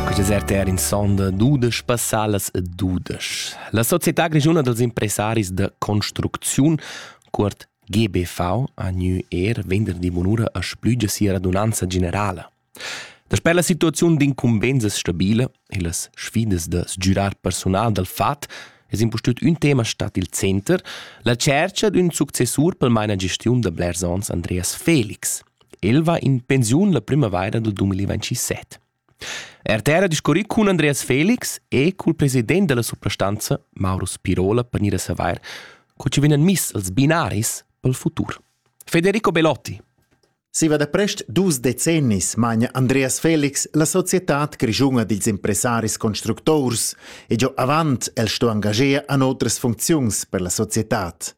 Quist desert era in sonda dudesch passalas e dudesch. La società grischuna dels impressaris da construcziun, cuort GBV a New Air, venderdi bunura a splügia sia radunanza generala. Dasper la situaziun d'incumbenzas stabile e las sfidas da sgiurar personal dal FAT es impustüt ün tema stat il center, la tschercha d'ün successur pel maina gestiun da blers ons Andreas Felix. El va in pensiun la primavaira dal 2027. Artera discurri cun Andreas Felix e cul president della suprastanza, Mauro Spirola, per gnir a savair co ci vegnan miss als binaris pel futur. Federico Belotti. Siva da prest dus decennis magna Andreas Felix la societad grischunga dils impressaris constructors e giò avant el sto engagier an otras funcziuns per la societad.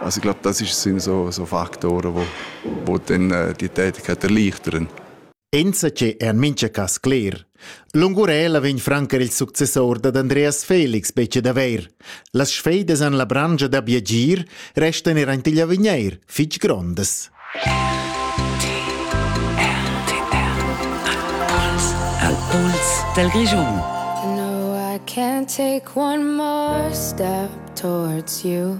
Also ich glaube, das ist, sind so, so Faktoren, die, die dann äh, die Tätigkeit erleichtern. Enzatge è en mincha cas cler. L'Ungurela vegn francar il successor dad Andreas Felix bece daver. Las sfeidas en la brangia da biagir restan er ant igl avigneir fitg grondas. Al puls del Region. No, I can't take one more step towards you.